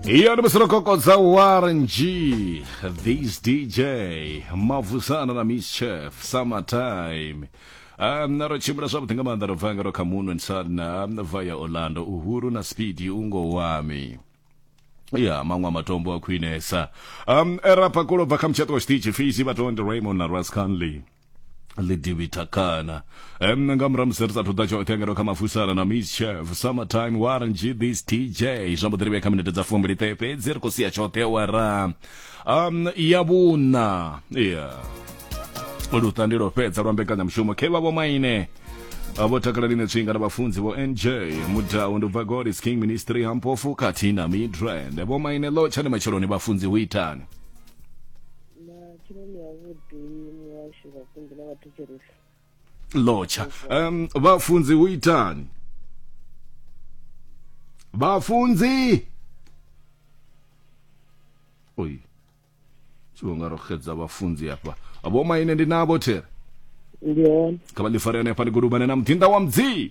iyo ndi masilokhokho dza warng this dj mavusana na miss chef summertime Um, ro tshimbila zwavhuḓi nga maanḓa ro bva nga ro kha moon and sun um, via orlando uhuru na speedy ungo wami ya maṅwe a matombo a khwinesa um erapa kulo bva kha mutshaṱo wa tshiṱitshi fisi vhatondi raymond na ras conley lidivithakana um nga murahu musi ri sathu ḓa tshoṱhe ngeno kha mafusara na miss chef summertime warren g this tj zwa mbo ḓi ri vhe kha minete dza fumbili ṱe fhedzi ri khou sia tshoṱhe wara um ya vhuna yeah luṱa ndi lwo fhedza lwa mbekanyamushumo khe vha vho maine vho takala line tswinga na vhafunzi vho nj mudau ndi bva god is king ministry ha mpofu khathihi na midrand vho maine ḽo tshani matsheloni vhafunzi hu itani matsheloni avhuḓi muhashu vhafunzi na vhathetshelesi lotsha um vhafunzi hu itani vhafunzi oyi tshiwo nga ro xedza vhafunzi hafha vho maine ndi navho there ndi hone kha vha ḽi fare hanefha ḽi gudubane na muḓinḓa wa mudzimu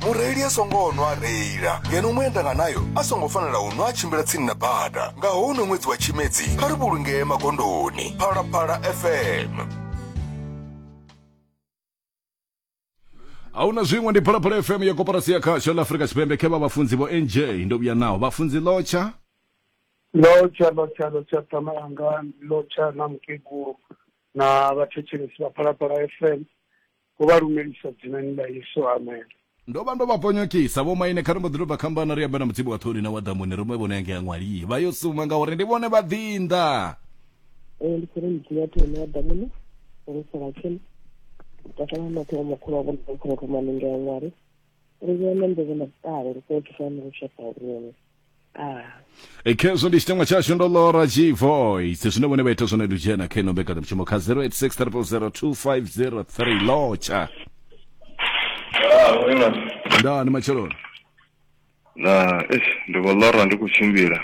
mureili a songo nwa a reila ngeno muendanga nayo a songo fanela u nwa a tshimbila tsini na bada nga hono ṅwedzi wa tshimedzi kha ri vhulungee magondoni phalaphala fm a hu na zwiṅwe ndi phalaphala fm ya koporasi ya khasho ḽa afurika tshipembe khe vha vhafunzi vho nj ndo vhuya naho vhafunzi lotsha lotsha lotsha lotsha ṱama yanga lotsha na mukegulu na vhathetshelesi vha phalaphala fm Vho vha lumelisa dzinani ḽa Yesu. Amen. Ndo vha ndo vha ponyokisa vhomaine kha ri mbo ḓi tou bva khambana ri amba na mutsibi wa ṱhoni na wa ḓamuni ri mwe vhone yange ya ṅwali vha yo suma ngauri ndi vhone vha ḓinḓa ee ndi khou ri mutsibi wa ṱhoni na wa ḓamuni ri sala tsheni takala maṱhe wa makhulu wa vhona khou ruma ninge ya ṅwali ri vhona mbe vhona ṱale ri khou thusana lushaka lwone E, khezwo ndi chitengwa chashu ndo lora gvoice zwine vhone vha ita zwone ndi u dzhena kha ino mbekanyamushumo kha 0863002503 lotsha nda ni matsheloni na eish ndi khou lora ndi khou tshimbila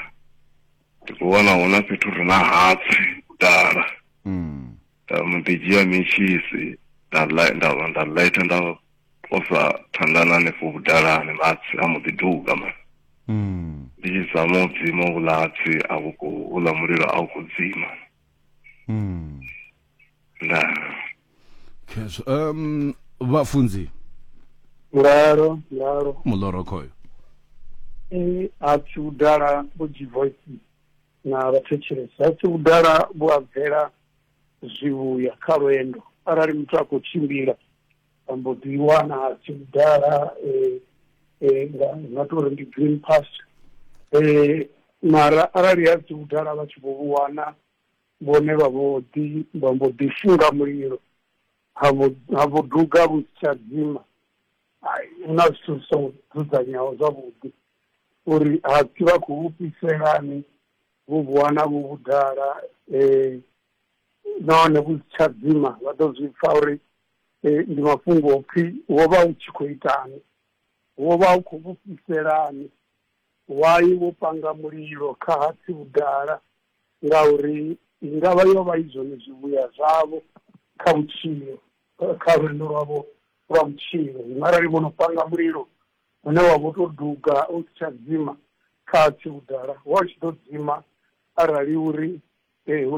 ndi khou wana huna fhethu ri na hatsi dala mm. nda mu ḓi dzhia mitshisi nda li- nda nda lighter nda posa thandana hanefho vhudalani matsi a mbo ḓi duga mani Mm. ndi tshi zama u dzima vhulatsi a vhu khou uḽa mulilo a u khou dzima Mm. na Khezwo. Um, vhafunzi Ngalo, ngalo. muloro khoyo. Eh, a tshi udala vho G-Voice na vhathetshelesi. A tshi udala vho abvela zwivhuya kha lwendo. Arali muthu a khou tshimbila, vha mbo ḓi wana tshi vhudala um nga to uri ndi green past um mara arali ha si vhudala vha tshi vho vhu wana vhone vha vho ḓi vha mbo ḓi funga mulilo ha vho ha vho duga vhu si tsha dzima hai hu na zwithu zwi songo dzudzanyeaho zwavhuḓi uri ha si vha khou fhiselani vhu vhu wana vhu vhudala um nahone vhu si tsha dzima vha ḓo zwi pfha uri eh, ndi mafhungo o pfi wo vha u tshi khou itani wo vha u khou vhufhiselani wai wo panga mulilo kha hatsi vhudala ngauri i nga vha yo vha i zwone zwivhuya zwavho kha vhutshilo eh, kha lwendo lwavho lwa vhutshilo zwino arali vho no panga mulilo une wa vho tou duga u si tsha dzima kha hatsi vhudala wa u tshi ḓo dzima arali uri eh, hu